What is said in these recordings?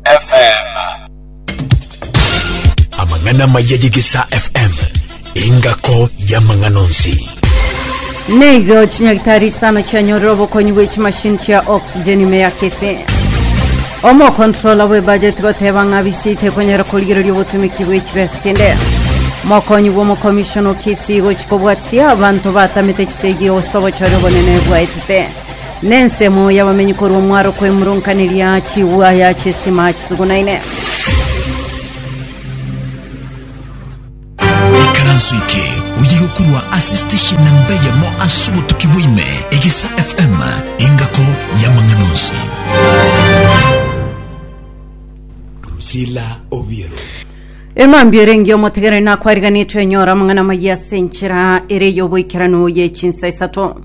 FM. Amang'ana amaya y'Egesaa FM, engako y'amang'ana onsi. Neigo chinyagitari isano chianyorire obokonyi bwe chimashini chia oxygen ime ya kese omokontrola bwe bajeti goteba ng'a bisi tekonyara korigereria obotumiki bwe chibesa chinde mokonyi bw'omokomishoni okisi gochikobwatisia abanto batamete chisegi ose obochori obonene bwaetete Nensemo y'abamenyi korwa omwaro kw'emoronkaneria chigwaya chi'esitima chisugunaine. Ikaranso eke oye gokurwa ase station namba eyemo ase obotuki bwaime egesa fm engako y'amang'ana onsi Priscilla Obiero. Emambia erenge omotegereri nakwariganetwe enyora amang'ana amayia ase enchera ere y'oboikeranu ye chinsa isato.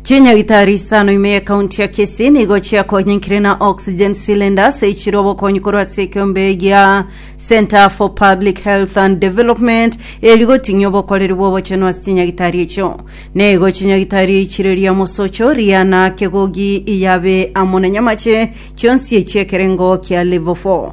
Chinyagitari isano ime y'ekaunti ya Kisii nigo chiakonyinkire na oxygen cylinders echire obokonyi korwa ase ekeombe gia Center for Public Health and Development eri goting'ia obokoreri bw'obochenu ase chinyagitari echio. Neigo chinyagitari eichire ria Mosocho, Riana, Kegogi, Iyabe amo na Nyamache chionsi echi'ekerengo kia Level 4.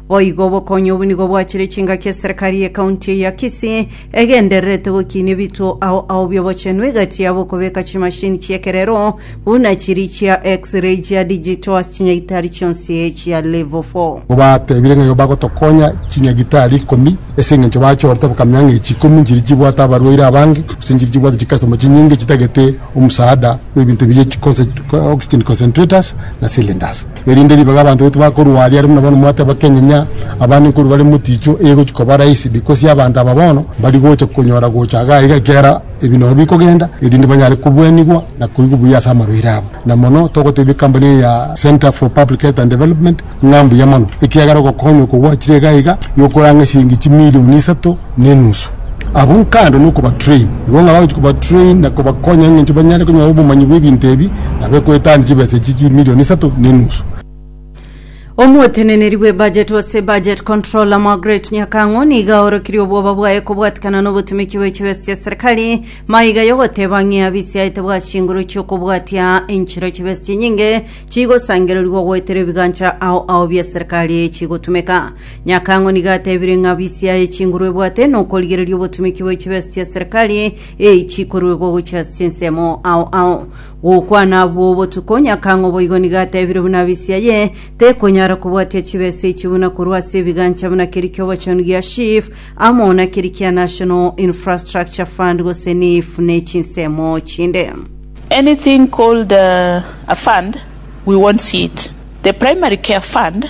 Boigo obokonyi obo nigo bwachire chingaki eserekari ye county eye ya Kisii egendererete gokinia ebituo ao ao bi'obochenu egati yabo okobeka chimashini chi'ekerero buna chiri chia X-ray chia digital ase chinyagitari chionsi chia Level 4. Nigo batebire ng'a nigo bagotokonya chinyagitari ikomi ase engencho bachorete bakamenya ng'a echi ikomi nchiria chibwate abarwaire abange, gose nchiria chibwate chicustomers chinyinge chitagete omosaada bw'ebinto ebi bie chi conce- oxygen concentrators na cylinders. Erinde ribaga abanto baito bakorwa aria, aria buna bono mwateba kenyenya abande nkorwa bare moticho, egochia koba rahisi because y'abanto aba bono mbari gocha konyora gocha iga iga ekiagera ebi nobo bikogenda, erinde banyare kobuanigwa na koigwa buya ase amarwaire abo. Na mono togotebia ekambani eye ya Centre for Public Health and Development ng'a mbuya mono, ekiagera ogokonywa okwo gwachire iga iga, yokorang'a eshiringi chimilion isato, nenusu. Abwo nkande nokobatrain, igo ng'aba gochia kobatrain na kobakonya engencho banyare konyora obomanyi bw'ebinto ebi na bekoetania chibesa echi chimilion isato nenusu. Omoteneneri bw'ebudget gose budget controller Margaret Nyakang'u nigo aorokirie obwoba bwaye kobwatikana nobotumeki bwe chibesa chia serikali maiga yogoteba ng'ea bisiaete bwa chinguru chi'okobwatia enchera chibesa chinyinge chigosangererigwa goetera ebigancha ao ao bia serikali chigotumeka Nyakang'o nigo atebire ng'a bisi yaye chinguru ebwate nokorigereria obotumiki bwa chibesa chia serikali eyi chikoruegwa gochia ase chinsemo ao ao. Gokwana abwo botuko, Nyakang'o boigo nigo atebire buna bisi yaye tekonyara kobwatia chibesa echi buna korwa ase ebigancha buna keria ki'obochenu gia SHIF amo na keria kia National Infrastructure Fund gose NIIF ne chinsemo chinde. Anything called a fund we won't see it. The primary care fund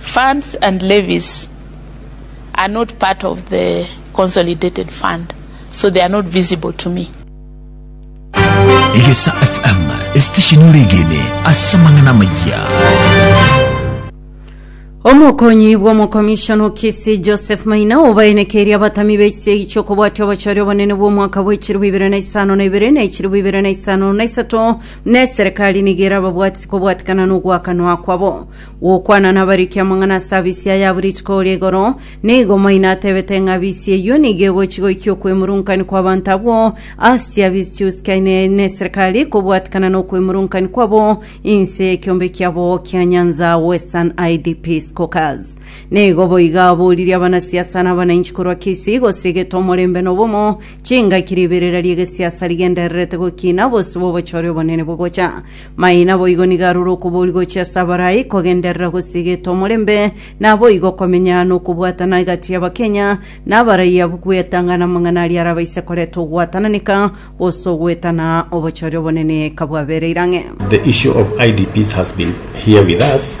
Funds and levies are not part of the consolidated fund so they are not visible to me. Egesa FM, esitesheni ore egene ase amang'ana amaya. Omokonyi bw'omokomishona o Kisii Joseph Maina obaenekeire abatami b'ekisiegi ky'okobwatia obochori obonene bw'omwaka bwa echirubu ibere na isano na ibere na echirubu ibere na isano na isato na eserekari nigo erababwatisi kobwatikana n'ogwakanwa kwabo Gokwana nabariki amang'ana ase abisi aya abwo rituko oria igoro, nigo maino atebete ng'a abisi eyio nigo egochi goikia okwemurungani kw'abanto abwo ase chiabisi chiusikane neserikali kobwatikana nokwemurungani kwabo inse y'ekiombe kiabo kia Nyanza Western IDP Squawkers. Nigo boiga aboririe abanasiasa na abananchi korwa Kisii gose egete omorembe na obomo, chingaki riberera ri'egesiasa rigendererete gokina bosio bw'obochore obonene bogocha Maye naboigo nigo arure okobori gochia ase abarai kogenderera gose egeto omorembe, naboigo okomenya na okobwatana egati ya bakenya na abarai abwo kwetang'ana amang'ana aria arabaise koreta ogwatananeka gose ogoetana obochori obonene kabwabereire ang'e. The issue of IDPs has been here with us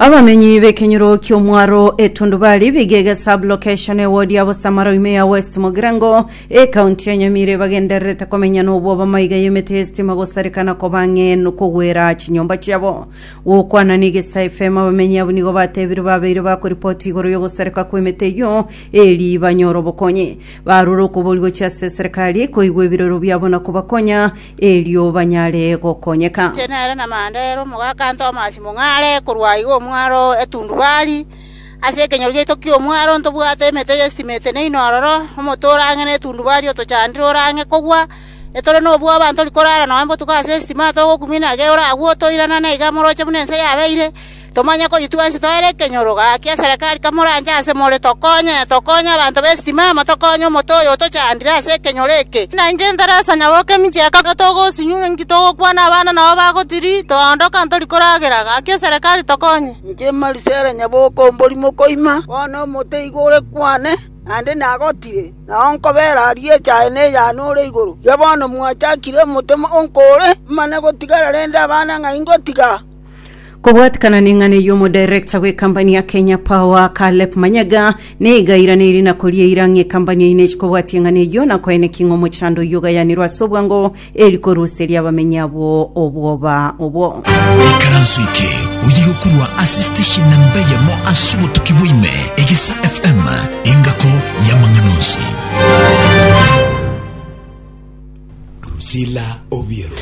Abamenyi b'ekenyoro ki'omwaro etundubari bigege sublocation eward ya Bosamara ime ya West Mogirango ekaunti ya Nyamire bagendererete komenya nobwo abamaiga y'emete y'esitima gosarekana kobang'en kogwera chinyomba chiabo. Gokwana n'Egesa FM abamenyi abwo nigo batebire babeire bakoripoti igoro y'ogosareka kw'emete eyio eri banyore obokonyi. Barure okoboria gochia ase eserekari koigwa ebirero biabo na kobakonya erio banyare gokonyeka. Inche nere namanda ere omogaka Tomasi mong'are korwa iga omwaro Etundubari, ase ekenyoro giaito ki'omwaro ntobwate emete y'esitimiti neino ororo, omotoro ang'e n'Etundubari otochandire ore ang'e kogwa, etore nobwoba ntori korara noe botuko ase esitima togokumia na ege oragwe otoirana na iga moroche buna ense yabeire. Tomanye kori twensi toere ekenyoro. Gaki eserekari kamoranche ase more, tokonye, tokonye abanto b'egetimama, tokonye omote oyo otochandire ase ekenyoro eke. Na inche Teresa, nyaboka emichie ya kabere, togosinyu, inki togokwana abana nabo bagotiri, toondoka ntori koragera. Gaki eserekari tokonye. Inche Marisela, nyaboka omorimo koima, bono omote igo ore kwane, naende nagotire, nao nkobera aria echaye ne eyane ore igoro. Erio bono mwachakire omote onko ore, mane gotigara rende abana ng'ai ngotiga? Kobwatikana neng'ana eyio omodirector bw'ekambani ya Kenya Power Caleb Manyaga niga airaneire na koria eira ng'a ekambani yaino echi kobwatia eng'ana eyio na koene ki ng'a omochando oyio ogayanirwe ase obwango eri koruseria abamenyi abwo obwoba obwo. Ikaranso eke oye gokorwa ase station namba eyemo ase obotuki bwaime Egesa FM engako y'amang'ana onsi. Drusilla Obiero.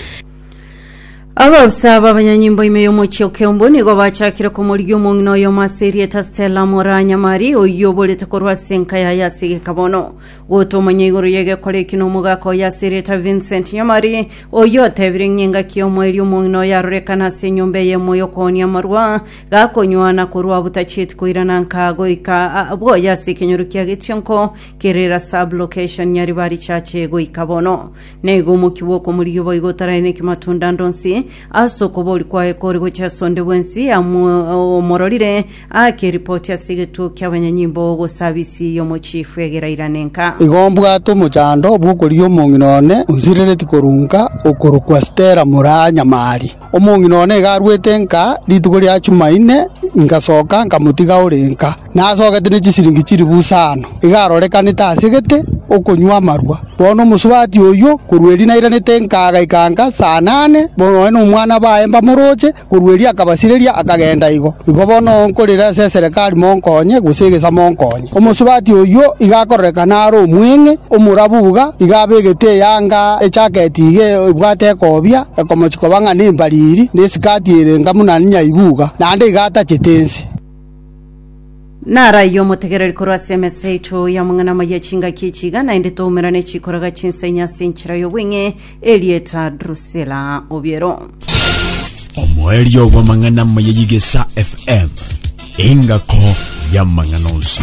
Abaofisa b'abanyanyimbo ime y'omochie o Keumbu nigo bachakire komorigia omong'ina oyomo ase erieta Stella Moranyamari, oyio oborete korwa ase enka yaye ase egeka bono. Gotomanya igoro y'egekora eki nomogaka oye ase erieta Vincent Nyamari, oyio otebire ng'a engaki y'omoerio omong'ina oyo arorekane ase enyomba eye emo y'okooonia amarwa, gakonywa na korua butachieti koirana nka goika a bwoye ase ekenyoro kia Getionko kerere ase Ablocation Nyaribari Church goika bono. Naiga omoki bw'okomorigia boigo otaraineki matunda ande onsi, ase okoboria kwaye kore gochia ase onde bwensi amu- omororire, aake eripoti ase egetuo ki'abanyanyimbo, gose abisi y'omochifu egere airane nka. Igo mbwate omochando bw'okorigia omong'ina one onsirereti korwa nka, okorokwa Stella Muranyamari. Omong'ina one iga arwete nka rituko ria Chumaine, ngasoka nkamotiga ore nka, nasogete ne chisiringi chiri busa aano, iga arorekanete asegete okonywa amarwa. Bono omosubati oyio, korwa erio nairanete nka agaika nka saa nane, noe nomwana baye mbamoroche, korwa erio akabasireria akagenda igo. Igo bono nkorera ase eserekari monkonye, gose egesa monkonye. Omosubati oyio iga akororekana are omweng'e, omorabu buga, iga abegete eyanga ejaketi iga ebwate ekobia, ekomochi koba ng'a nembariri, na esikati ere enga buna nyaibuga, naende iga atachete ense. Naraiyo omotegereri korwa ase emesa yaito y'amang'ana amaya chingaki echi iga naende toumera ne chikoraga chinsaini ase enchera y'obweng'e erieta Drusila Obiero. Omoerio bw'amang'ana amaya y'Egesaa FM, engako y'amang'ana onsi.